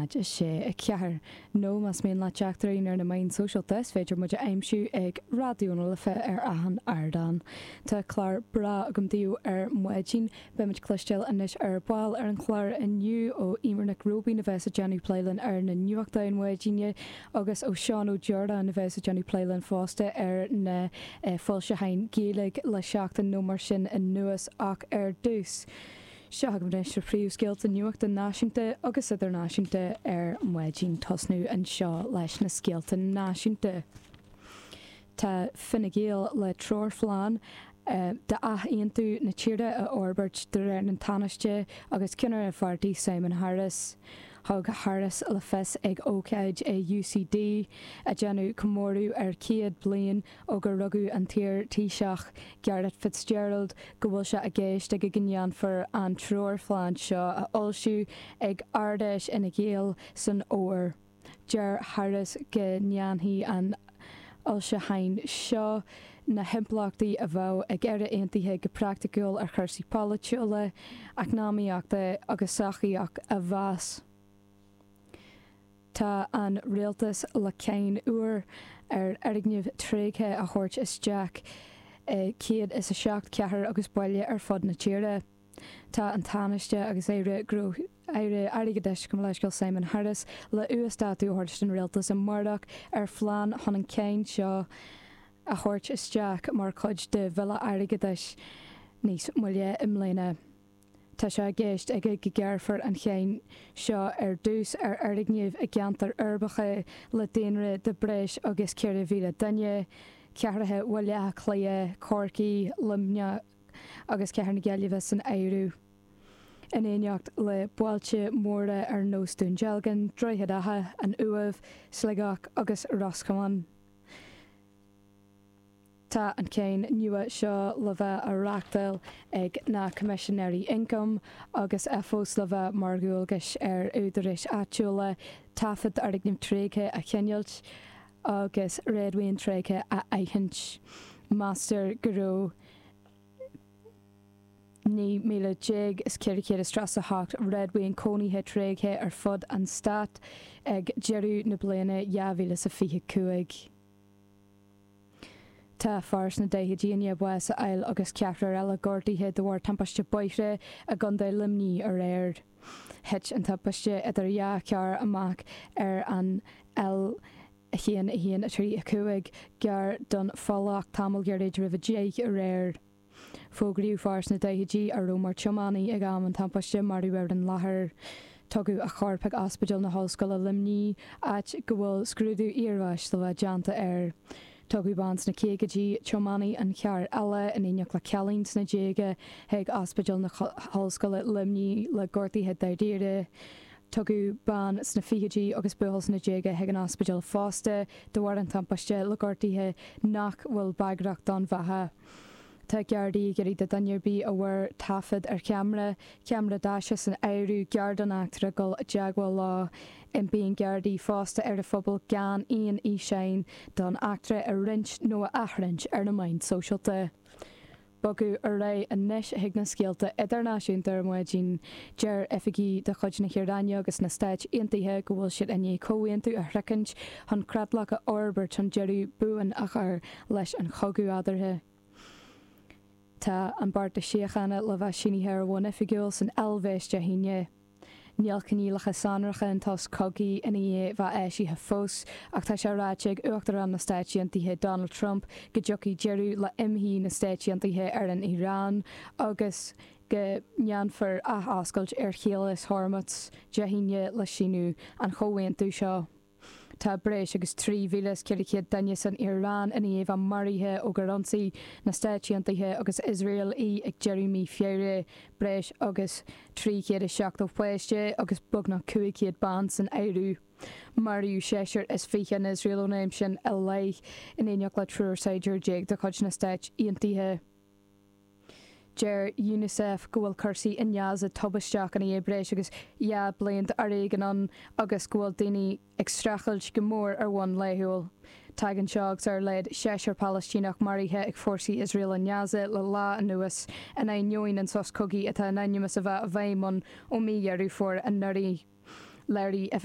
6, 4. Nó más mian libh teacht orainn ar na meáin shóisialta, is féidir muid a aimsiú ag Raidió na Life ar achan ardán. Tá clár breá agam daoibh ar maidin. Beimid cloistéail anois ar ball ar an chlár inniu ó Emer Nic Róibín a bheas ag déanamh plé linn ar na nuachtáin maidine agus ó Seán Ó Deardáin a bheas ag déanamh plé linn fosta ar na foilseacháin Gaeilge le seachtain nó mar sin anuas ach ar dtús, Seo agaibh anois na príomhscéalta nuachta náisiúnta agus idirnáisiúnta ar maidin. Tosnú anseo leis na scéalta náisiúnta. Tá Fine Gael le treoirphlean d'athaontú na tíre a fhorbairt de réir an Tánaiste agus ceannaire an pháirtí Simon Harris. Thug Harris le fios ag ócáid i UCD a dhéanamh comóradh ar 100 bliain ó gur rugadh an t-iar Taoiseach, Garret FitzGerald, go bhfuil sé i gceist aige go ndéanfar an treoirphlean seo a fhoilsiú ag Ardfheis Fhine Gael san Fhómhar. Deir Harris go ndéanfaidh an foilseachán seo na himpleachtaí a bheadh ag Éire Aontaithe go praiticiúil ar chursaí polaitiúla, eacnamaíochta agus sochaíoch a mheas. Tá an Rialtas le cáin úr ar fhoirgnimh tréigthe a thabhairt isteach i 107 cathair agus baile ar fud na tíre. Tá an Tánaiste agus Aire Airgeadais, gabh mo leithscéal, Simon Harris le uasdátú a thabhairt don Rialtas amáireach ar phlean chun an cháin seo a thabhairt isteach mar chuid de Bhille Airgeadais níos moille i mbliana. Tá sé i gceist aige go gearrfar an cháin seo ar dtús ar fhoirgnimh i gceantair uirbeacha le daonra de breis agus 4,000 duine, cathracha Bhaile Átha Cliath, Corcaí, Luimneach agus Cathair na Gaillimhe san áireamh, in éineacht le bailte móra ar nós Dún Dealgan, Droichead Átha, an Uaimh, Sligeach agus Ros Comáin. Tá an cháin nua seo le bheith á reachtáil ag na Coimisinéirí Ioncaim agus é fós le bheith mar dhualgas ar údaráis áitiúla taifead foirgneamh tréigthe a choinneáilt agus réadmhaoin tréigthe a aithint. Meastar go raibh 19,438 réadmhaoin cónaithe tréigthe ar fud an Stáit ag deireadh na bliana 2025. Tá fear sna daichidí i ndiaidh bás a fháil agus ceathrar eile gortaithe de bharr timpiste bóthair i gContae Luimnigh aréir. Thit an timpiste idir dhá charr amach ar an L1 1 3 5 gar don Phollach tamall gairid roimh a deich aréir. Fógraíodh fear sna daichidí a raibh mar tiománaí ag am an tampáiste marbh ar an láthair. Tugadh a chorp chuig Ospidéal na hOllscoile Luimnigh áit go bhfuil scrúdú iarbháis le déanamh air. Tugadh bean sna caogaidí, tiománaí an chairr eile, in éineacht le cailín sna déaga chuig Ospidéal na hOllscoile Luimnigh le gortaithe dairíre. Tugadh bean sna fichidí agus buachaill sna déaga chuig an ospidéal fosta de bharr an tampáiste le gortaithe nach bhfuil bagrach don bheatha. Tá Gardaí ag iarraidh ar dhuine ar bith a bhfuair taifead ar cheamara, ceamara daise san áireamh, gar don eachtra dul i dteagmháil leo. Impíonn Gardaí fosta ar an phobal gan aon fhíseáin don eachtra a roinnt nó a athroinnt ar na meáin sóisialta. Bogadh ar aghaidh anois chuig na scéalta idirnáisiúnta ar maidin. Deir oifigigh de chuid na hIaráine agus na Stáit Aontaithe go bhfuil siad i ndiaidh comhaontú a shroichint chun creatlach a fhorbairt chun deireadh buan a chur leis an chogadh eadarthu. Tá an beart síochána le bheith sínithe ar bhonn oifigiúil san Eilvéis Dé hAoine. Níl coinníollacha sonracha an tsos cogaidh i ndiaidh bheith eisithe fós ach tá sé ráite ag Uachtarán na Stáit Aontaithe Donald Trump go dtiocfaidh deireadh le imshuí na Stáit Aontaithe ar an Iaráin agus go ndéanfar athoscailt ar Chaolas Hormuz Dé hAoine le síniú an chomhaontú seo. Tá breis agus 3,400 duine san Iaráin i ndiaidh a bheith maraithe ó gur ionsaigh na Stáit Aontaithe agus Iosrael í ag deireadh mí Feabhra, breis agus 370 páiste agus beagnach 500 ban san áireamh. Maraíodh seisear is fiche in Iosrael ón am sin i leith, in éineacht le triúr saighdiúir déag de chuid na Stáit Aontaithe. Deir Unicef go bhfuil cúrsaí i nGaza tubaisteach i ndiaidh breis agus dhá bliain d'fhoréigean ann agus go bhfuil daoine ag streachailt go mór ar bhonn laethúil. Tagann seo agus ar laghad seisear Palaistíneach maraithe ag fórsaí Iosrael i nGaza le lá anuas in ainneoin an sos cogaidh atá in ainm is a bheith i bhfeidhm ann ó mí Dheireadh Fómhair anuraidh. Léirigh Oifigeach.